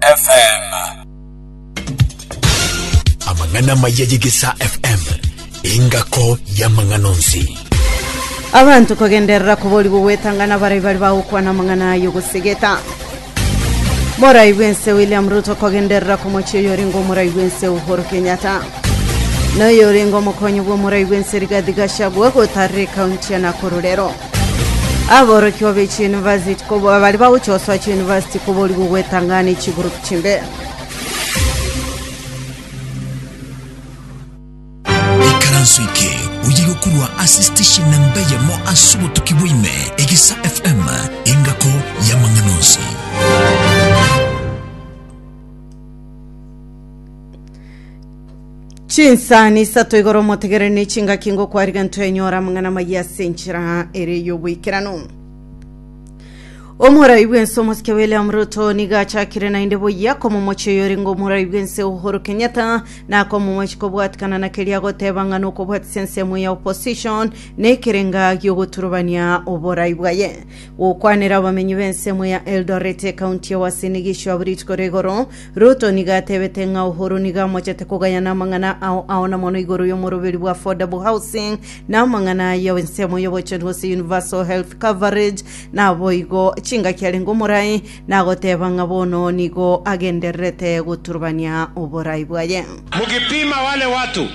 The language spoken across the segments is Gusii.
FM. Amang'ana amaya y'Egesaa FM, engako y'amang'ana onsi. abanto kogenderera koborigwa gwetang'ana barai bari bagokwana amang'ana ayo gosegeta morai bw'ense william ruto kogenderera komochi oyo orenga omorai bw'ense uhuru kenyatta noyo orenga omokonyi bw'omorai bw'ense rigathi gachagua gotarire kaunti ya nakuru rero Aborokia be chiyunivasiti koboa baria bagochia gosoa chiyunivasiti koborigwa gwetang'ana echigurupu chimbe. ikaranso eke oye gokurwa ase station namba eyemo ase obotuki bwaime egisa fm engako y'amang'ana onsi chinsani isato igoro motegerere ne chingaki ngokwariga ntwenyora amang'ana maya ase enchera ere y'oboikerano omorai bw'ense omosike william ruto niga achakire naende boyia komomochi oyore ngo omorai bw'ense uhuru kenyatta nakomomochi kobwatikana na keria agoteba ng'a nokobwatisia ensemo ya opposition nekerenga giogoturubania oborai bwaye gokwanera abamenyi b'ensemo ya eldoret ekaunti ya wasinigi isio aburiti kore igoro Ruto nigo atebete ng'a Uhuru nigo amochete kogayana amang'ana ao ao na mono igoro y'omoroberi bwa affordable housing na amang'ana ya ensemo y'obochenu gose universal health coverage naboigo chingaki arenge omorai nagoteba ng'a bono nigo agendererete goturubania oborai bwaye. Mkipima wale watu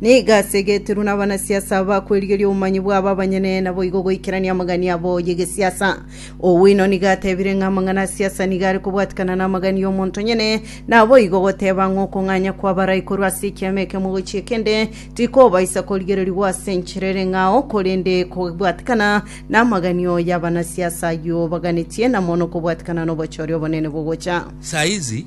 Nigo ase getirwe nabanasiasa aba kwerigeria obomanyi bwabo abanyene, naboigo goikerania amagani abo y'egesiasa. Owino nigo atebire ng'a amang'ana a siasa nigo are kobwatikana n'amagani y'omonto nyene, naboigo goteba ng'a okong'anya kw'abarai korwa ase ekiama ekemo gochia ekende tikobaisa korigererigwa ase enchera ere ng'ao, korende kobwatikana n'amagani oo y'abanasiasa ayio baganetie na mono kobwatikana n'obochori obonene bogocha. Saizi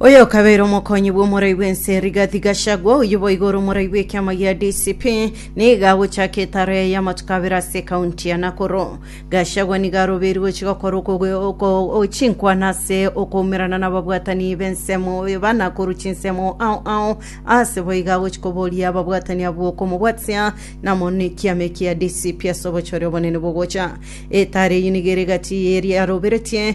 Oyo okabeire omokonyi bw'omorai bw'ense Rigathi Gachagua oyio boigo ore omorai bw'ekiama gia DCP niga agochaka etaro yaye y'amatuko abere ase ekaunti ya Nakuru. Gachagua nigo arobeirwe gochia gokora okogo- oko- o- chinkwana ase okoumerana n'ababwatani b'ensemo ba Nakuru chinsemo ao ao ase boigo agochia koboria ababwatani abwo komobwatia namo nekiama eki gia DCP ase obochore obonene bw'ogocha. Etaro eyio nigo ere egati y'eria aroberetie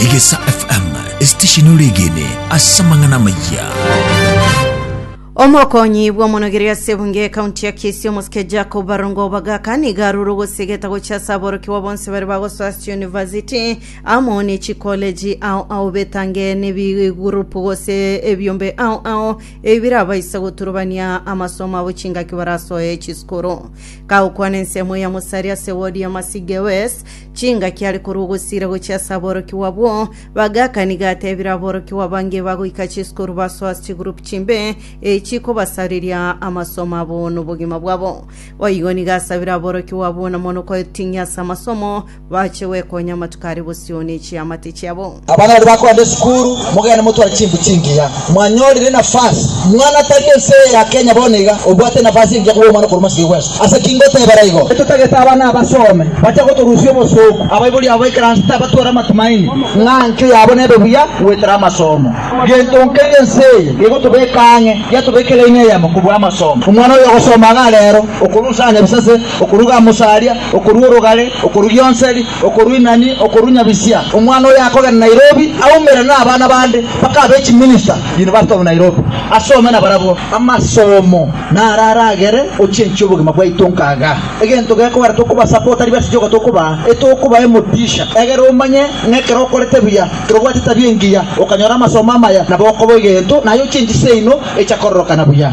Egesa FM, esitesheni oregene ase amang'ana amayia. omokonyi bw'omonogeri ase ebunge ekaunti ya kisi omosike jacob barongo bagaka niga arure ogosegeta gocha ase aborokiwa bonse bare bagosoa ase university amo ne chikoleji ao ao betange nebigurupu gose ebiombe ao ao ebi birabaisa goturubania amasomo abo chingaki barasoe chisukuru kagokwana ensemo ya mosari ase wodi ya masige west Chingaki are korwa ogosiira gochia ase aborokigwa abwo, bagakani gateebire aborokigwa abange bagoika Jeso korwa basoa ase chigurupu chimbe, echi chikobasareria amasomo abo nobogima bwabo. Boigo nigo asabire aborokigwa abwo na mono koting'ia ase amasomo, bache gwekonya amatuko are bosio ne chiamate chiabo. Abana baria bakogenda esukuru, mogende motware chinguru chingiya. Mwanyorire nafasi. Mwana tari ense eye ya Kenya bono iga, obwate nafasi engiya koba omwana okorwa mosike bwensi. Ase ki ngotebera igo? Totagete abana abasome, bache gotorusia obosooku. Abaibori abo b'ekeranse tabatwara amatumaini ng'a enchwe yabo nebe buya goetera amasomo. Gento nkeria ense eye gegotobeka ang'e, yatobeke laini eyemo kobua amasomo. Omwana oyo ogosoma iga reero, okorusia aane ebisase, okoruga amosaria, okorua orogare, okorugia onseri, Okorwa Inani, okorwa Nyabisia, omwana oye akogenda Nairobi aumere nabana bande mpaka abe chiminista University of Nairobi asome nabarabwo. Amasomo naro aragere ochenche obogima bwaito nkaga. Egento gekogera tokobasapota aria baticha ogo tokobaa, etokobae emodisha. Egera omanye ng'a ekero okorete buya, ekero obwate etabia engiya, okanyora amasomo amaya, nabo okoba egento naye ochenchi seino echa kororokana buya.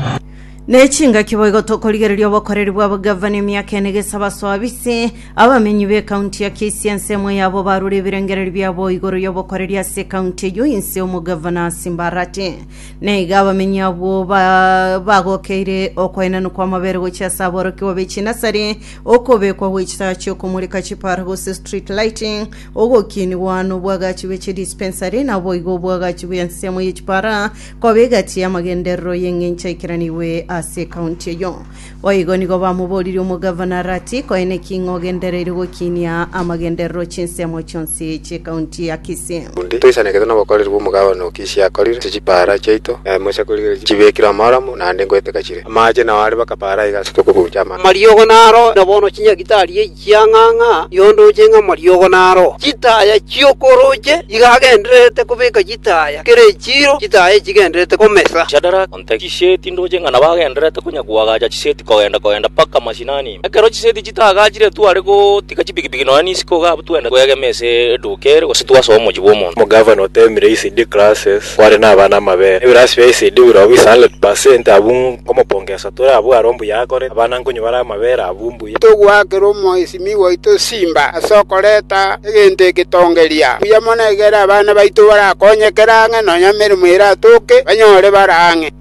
Ne chingaki boigo tokorigereria obokoreri bw'abagavana emiaka ene gesa basoabise abamenyi b'ekaunti ya Kisii ense emo yabo barure ebirengererio biabo igoro y'obokoreri ase ekaunti eyio inse omogavana asimbarate. Na iga abamenyi abwo ba- bagokeire okwaenanwa kw'amabere gochia ase aborokigwa be chinasari, okobekwa gwe chitaa chi'okomoreka chipara gose street lighting, ogokiinigwa nobwagachi bwe chidispensary, naboigo obwagachi bw'ensemo ye chipara Koba egati y'amagenderero y'engencho aikeranigwe ase ekaunti eyio. Boigo nigo bamoboririe omogavana Arati, Koine ki ng'a ogendereire gokiinia amagenderero chinsemo chionsi chi'ekaunti ya Kisii? Undi, toisanekete nobokoreri bw'omogavana o Kisii akorire, ase chipaara chiaito, na emo ase korigereria chibekirwe amaaromo, naende ngoeteka chire. Amaache nao are baka paara iga ase tokobuucha amache. Amariogo naro, na bono chinyagitari eyio. Chiang'ang'a yondooche ng'a mariogo naro chitaya chi'okworoche iga agendererete kobeka chitaya kera echiiro chitaya echigendererete komesa. Shadraka, onte chiseti ndooche ng'a nabo agendererete konya koagacha chiseti kogenda kogenda mpaka mashinani ime. Ekero chiseti chitaagachire tware gotiga chipikipiki nonya nisiko iga abwo twende twegeme ase eduuka ere gose twasoe omochie bw'omonto. Omogavana oteemire ECD classes kware nabana amabere. Ebirasi bia ECD biroa bisa 100% abwo nkomopongesa tore abwo aro mbuya akorete. Abana nkonywa bare amabere abwo mbuya. Togoakera omoisimi oito simba ase okoreta egento egetongereria. Mbuya mono ekero abana baito barakonyekere ang'e, nonya emeremo eratoke, banyore bare ang'e.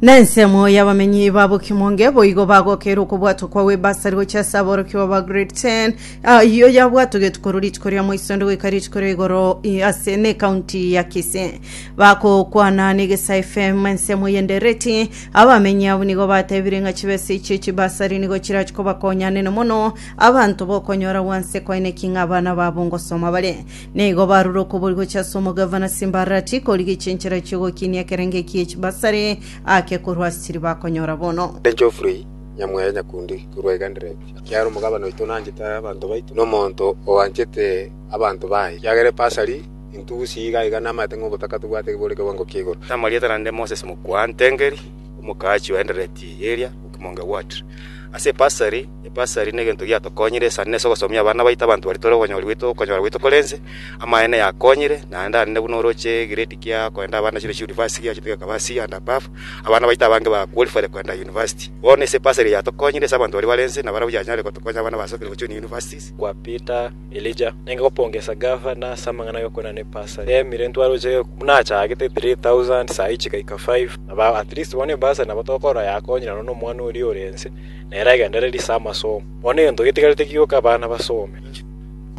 Na ensemo y'abamenyi ba Bokimonge boigo bagokeire okobwatwa kwa Webasari gochia ase aborokigwa ba Grade 10. Ah, Eyio yabwatogetwe korwa rituko ria moisonde goika rituko ria igoro i- ase n'ecounty ya Kisii. Bagokwana n'Egesa FM ensemo y'endereti Abamenyi abwo nigo batebire ng'a chibesa echio chibasari nigo chirachie kobakonya nene mono, abanto bokonyora gwanse kwaine ki ng'a abana babo ngosoma bare. Nigo barure okobori gochia ase omogavana Simbarati korigecha enchera chi'ogokinia ekerengo eki gie chibasari ake korwa ase chiria bakonyora bono. Ere Geoffrey nyamwere nyakundi korwa Igandereti, ekiagera omogabana oito nanchete abanto baito, na omonto oanchete abanto baye, ekiagera ebasari Intugusi iga iga namaete ng'a obotaka tobwate bore kewango kia igoro. Namarieta naende Moses Mokwaantengeri, omokachi o Endereti eria Okimong Ward. Ase ebasari, ebasari negento giatokonyire esani ase ogosomia abana baito abanto baria tore okonyora goito okonyora goito korense, amaene yakonyire naende arende buna oroche egrade kia koenda abana chire chiunivasti giachete gekaba C and above, abana baito abange ba qualified koenda university. Bono ase ebasari eye yatokonyire ase abanto baria barense nabarabwo yanyare gotokonya abana basokire gochuni universities. Kwa Peter Elija, nenge gopongesa Gava na ase amang'ana agokwana ne bursary. Ee, mire ntwaroche buna achagete 3,000 saii chigaika 5. Aba at least bono ebursary nabo tokora yakonyire nono omwana oria ore ense, nere agendererie ase amasomo. Bono egento getigarete kigoka abana basome.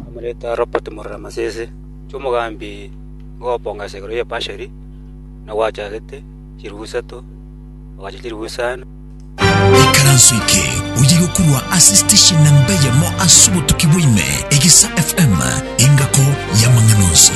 Amoreta Robert Murora Masese, inche omogambi ngogopongesa igoro ye bursary, na gwachagete chilifu isato, ogacha chilifu isano. Ekaranso eke oye gokurwa ase station namba eyemo ase obotuki bwaime, Egisa FM, engako y'amang'ana onsi.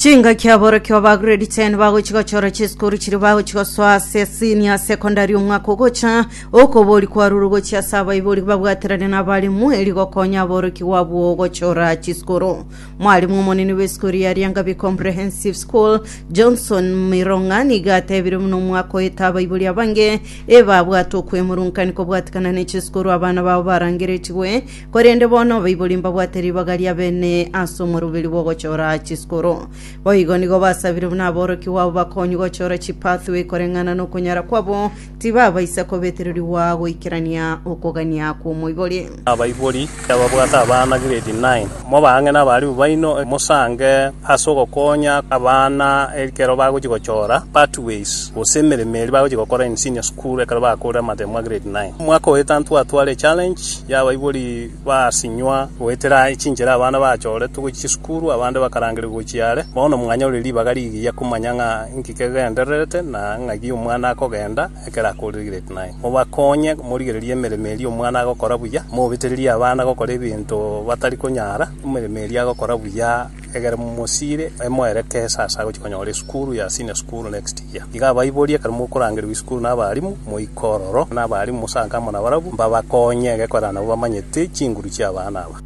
chingaki aborokio ba grade 10 bagochi gochora chisukuru chiri bagochi gosoa ase senior secondary omwaka ogocha okobori kwaruru gochia ase abaibori babwaterane na abarimu eri gokonya aborokigwa abwo gochora chisukuru Mwarimu omonene bw'esukuru ya Riangabi Comprehensive School, Johnson Mirong'a, nigo atebire buna omwaka oeta abaibori abange ebabwate okwemurunkanio kobwatikana ne chisukuru abana babo barangeretigwe, korende bono abaibori mbabwate ribaga ria bene ase omoruberi bw'ogochora chisukuru. Boigo nigo basabire buna aborokigwa abo bakonywe gochora chipathway koreng'ana nokonyara kwabo Tibabaisa kobetererigwa goikerania okogania kw'omoibori. Abaibori ababwate abana grade nine, mobaang'e n'abarimu baino mosange ase ogokonya abana ekero bagochia gochora pathways gose emeremo eria bagochia gokora in senior school ekero bakoorire amatemo a grade nine. Omwaka oeta ntwatware echallenge y'abaibori. Basinywa goetera echinchera abana bachoretwe gochia chisukuru, abande bakarangeria gochia are. Bono mwanyore ribaga rigiya komanya ng'a inki kegendererete na ng'aki omwana akogenda ekero akoregete. Naende mobakonye morigererie emeremo eria omwana agokora buya, mobetererie abana gokora ebinto batari konyara emeremo eria agokora buya. Ekero mosiire, moere kesa ase agochia konyora esukuru ya senior school next year. Iga abaiborie ekero mokorangerigwa esukuru na abalimu, moike ororo na abalimu mosanke amo nabarabwo mbabakonye egekorera nabo bamanyete chinguru chia abana aba.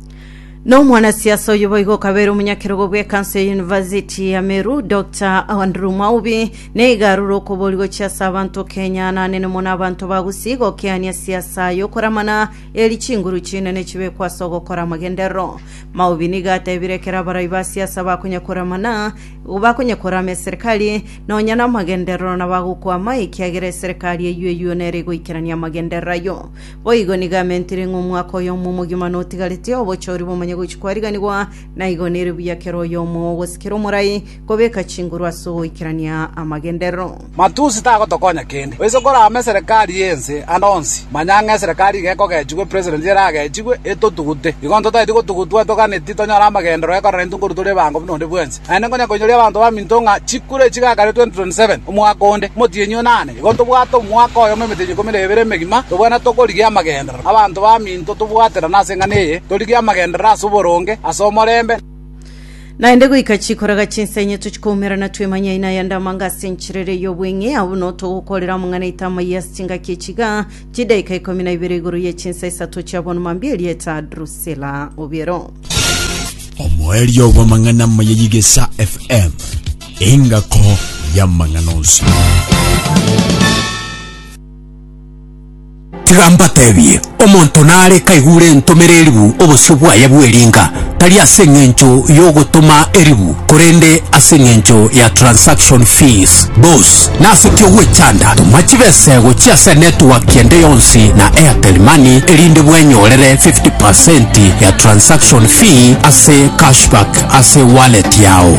Na omwanasiasa oyo boigo okabeire omonyakerogo bw'ekanso ya University ya Meru, Doctor Andrew Mwaubi, na iga arure okobori gochia ase abanto Kenya, nanene mono abanto ba Gusii gokeania siasa y'okoramana Eri chinguru chinene chibekwe ase ogokora amagenderero. Maobi nigo atebire ekero abarai ba siasa bakonyakoramana, bakonyakorama eserekari, nonya namagenderero nabagokwama, ekiagera eserekari eyio eyio nere egoikerania amagenderero ayio. Boigo nigo amentire ng'a omwaka oyomo omogima notigarete, obochori bomanye gochia kwariganigwa, naigo nere buya kera oyomo ogosikera omorai, Kobeka chinguru ase ogoikerania amagenderero. Matusi tagotokonya kende. Oise korame eserekari y'ense ande onsi, manya ng'a eserekari iga ekogechigwa epresident eragechigwe etotugute. Igo ntotaeti gotugutwa toganeti tonyore amagenderero ekoraneti nkoru tore ebango buna onde bwensi. Naende nkonya koinyoria abanto baminto ng'a chikura echi gakare 2027, omwaka onde, omotienyi o nane. Igo ntobwate omwaka oyomo emetienyi ikomi na ebere emegima, tobwene tokorigia amagenderero. Abanto baminto tobwaterane ase eng'ana eye, torigie amagenderero ase oboronge, ase omorembe, naende goika chikoraga chinsa enye tochikoumerana twemanye aina yande amanga ase enchera ere y'obweng'e abwo no togokorera omong'ana ita amaiyo ase chingaki echiga chidaika ikomi na ibere igoro ye chinsa isato chia bono mambia erieta drusela obiero omoerio bw'amang'ana amaya y'igesa fm engako y'amang'ana onsi Tiga mbatebie, omonto nare kaigure entomera eribu obosio bwaye bw'eringa, tari ase engencho y'ogotoma eribu, korende ase engencho ya transaction fees. Boss, nase ki ogwechanda? Toma chibesego chi'ase network ende yonsi na Airtel Money erinde bwenyorere 50% ya transaction fee ase cashback ase wallet yao.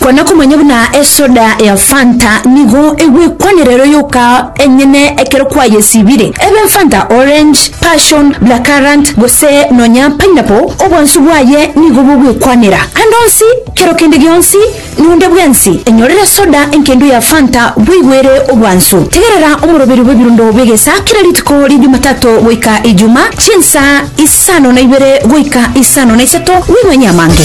Kwana komanya buna esoda ya Fanta nigo egwekwanera ero yoka enyene ekero kwayesibire. Ebe Fanta Orange, Passion, Blackcurrant gose nonya Pineapple, obwansu bwaye nigo bogwekwanera. Ande onsi, kero kende gionsi, nonde bwensi, enyorere soda enkendo ya Fanta boigo ere obwansu. Tegerera omoroberi bw'ebirundo bw'egesa kera rituko ria Jumatato goika Ijuma, chinsa isano na ibere goika isano na isato, boigo enyamange.